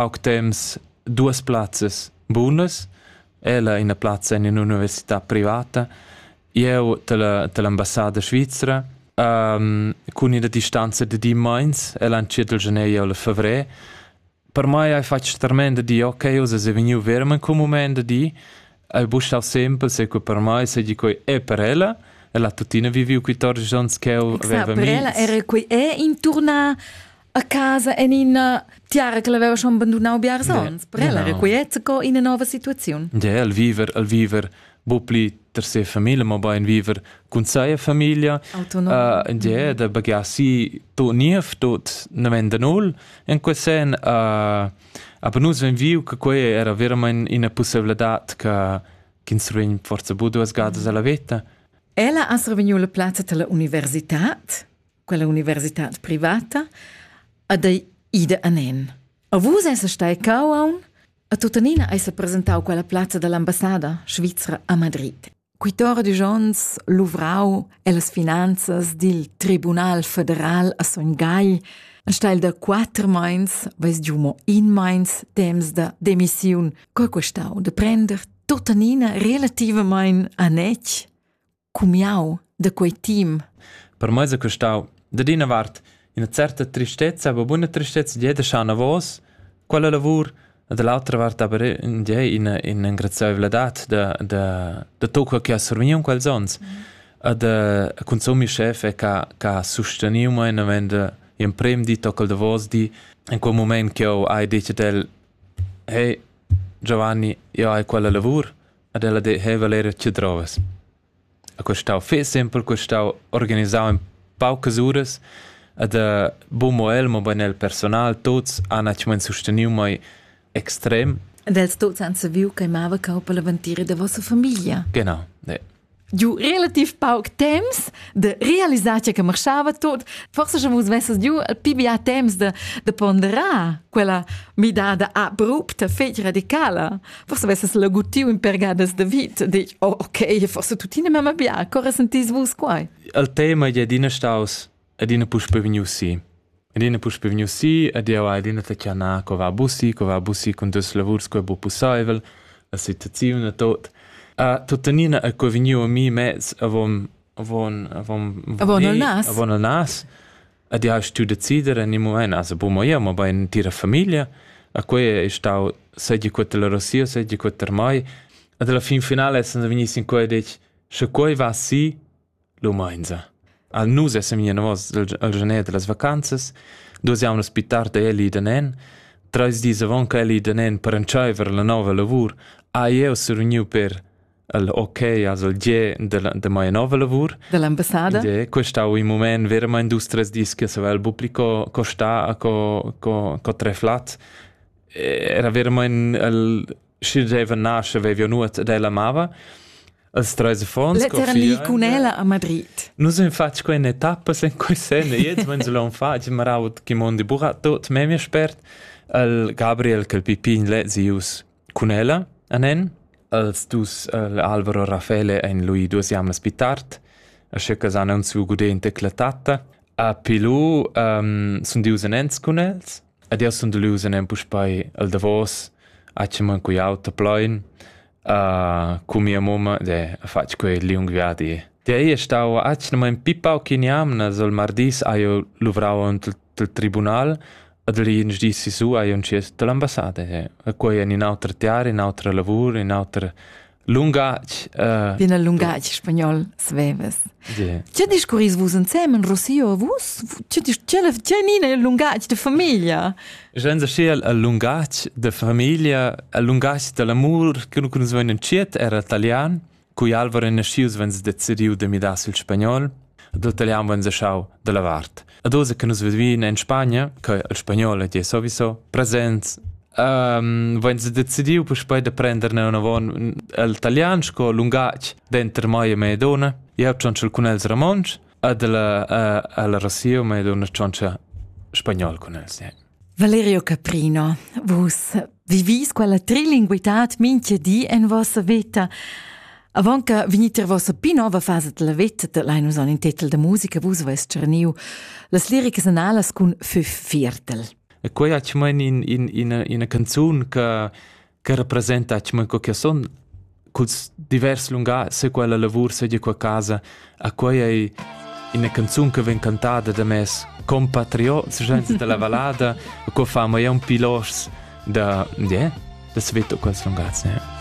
Aug temps duas plazzas bunas. Ella ina plazza in un'università privata. Eu dalla dall'ambassada svizra. cun ina distanza da di meins ella entschiet il gener e fevrer. Per mai hai fatg tremend da dir, ok, uss es vegniu verament cun mument da dir. Hai bustav sempre se que per mai seigi quei è per ella. Ella tuttina viviu quatordici onns ch'eu veva mi. Per ella era quei è intorna a casa en ina tiara che l'aveva schon bandunau biars onns. Per ella era quiet co ina nova situaziun. Ja, el viver, el viver bu pli ter se famiglia, ma bein viver cun seia famiglia. Autonom. Uh, ja, da bagasi to niev, tot nemenda null. In quel sen, uh, aber nus ven viu che quei era veramente una possibilità che ins vegn forse bu duas gadas alla vita. Ella ha revegniu la plazza della università quella universitad privata, ad ei ida anen. A vus esa stai cauaun? A tuttenina eis presentau quella plazza dall'ambassada svizra a Madrid. Quitore de Jons luvrau ellas finanzas dil Tribunal federal a Son Gai, a steil da quater meins, veis giu mo in meins temps da demissiun, co questau de prender tuttenina relativamein a nec? cumiau da quei team. Per mei è costau da ina vart ina certa tristezza, aber buona tristezza di da Schanavos, quella lavur da l'altra vart aber in di ina in engraziaivladad da da da tocca che ha survigniu quels ons mm. da consumi chef che che ha susteniu mai novend in prem di toccal da vos di in quel moment che ho hai detto del hey Giovanni io hai quella lavur Ad ella deheva l'eira tschedrovas. A custau fich simpel, custau organisau in paucas uras ed bumo el, mobain el personal, tuots han actualmaing susteniu mei extrem. Ed els tuots han saviu ch'ei mava cau per la ventira da vossa famiglia. Genau, ne. giu relativ pauc temps de realisar che marchava tot forse schon vus vesses giu el pi bia temps de, de ponderar quella midada abrupta fetg radicala forse vesses lagutiu in pergadas de vit dic oh ok forse tuttina mamma bia corre sentis vus quai al tema je adina staus adina puspe vegniu si. Adina puspe vegniu si ed jeu hai adina tschanà co va bussi, co va bussi cun dus lavurs co bu pusseivel, la situaziun e tot. A tuttenina è co vegniu a mi mez avon avon avon avon il nas avon il nas ed jeu stu decider en il moment also bu mo jeu mo bei entira famiglia a quei è stau segi quella Rosia segi quella mai ed alla fin finale essendo vegni sin quei detg sche quei va si Lumainza. Al nus essem i anavos al janer da las vacanzas. Duos jaunas pi tard è el i da nen. Trais dis avant ch'el i da nen per entschaiver la nova lavur, ha jeu survegniu per il ok als il gie della, da mia nova lavur. Dell'ambassada. Gie, questo ha un moment veramente dus tres dis che savel bupli co co sta a co co co tre flat. Era veramente il sch'il gieiver nasce vevio nuot ed ella amava. Als treis affons Letteren li cun ella a Madrid. Nus en fatg quei etappas en quei sen e jetzt wenn solon fatg maraut chi mondi burat tot memia spert al Gabriel kel pipin le zius cun ella anen als dus al Alvaro Raffaele ein lui duas jamlas pitart a schecca san un su gudente clatata a pilu um, sun dius en ents cun els Ed jeu sun delus en puspei el davos, a tschemman cu jau ta plein cu mia mumma ed ha fatg quei liung viadi. Di ei è stau atgnamain pi pauc in jamnas. El mardis hai jeu luvrau ante il tribunal ed il ins di sisù hai jeu entschiet dall'ambassada. E quei en in auter tiar, in autra lavur, in auter lungatg uh, bien el lungatg spagnol sveves yeah. Che discurris vus ensemen Rossio vus che che nina il lungatg de famiglia Jensa schiel al lungatg de famiglia al lungatg de l'amor che nu kunz vein entschiet era italian cui Alvaro nascius vens decediu de midar sil spagnol de italian vens schau de la vart Ad oz che nus vivin en Spagna, che il spagnol è sowieso present, um, wenn sie decidiu puspei da prender nevon el italian sco lungatg denter mai e Maidona, jeu tschontsel cun els romontsch, ad la uh, alla Rossio Maidona tschontscha spagnol cun els. Ja. Valerio Caprino, vus vivis quella trilinguitad minche di en vossa vita. Avant che venit ir vossa pi nova fasa della vita, da l'hai nus an in titel da musica, vus avais tscharniu las liricas analas cun Fü Viertel. E quei ha tschmain in, in, ina, ina canzun che che representa co che son culs divers lungà se quella lavur segia qua casa a quei ei ina canzun che vegn cantada da mes compatriot senza della valada co fa mai un pilos da yeah, da sveto quels lungats ne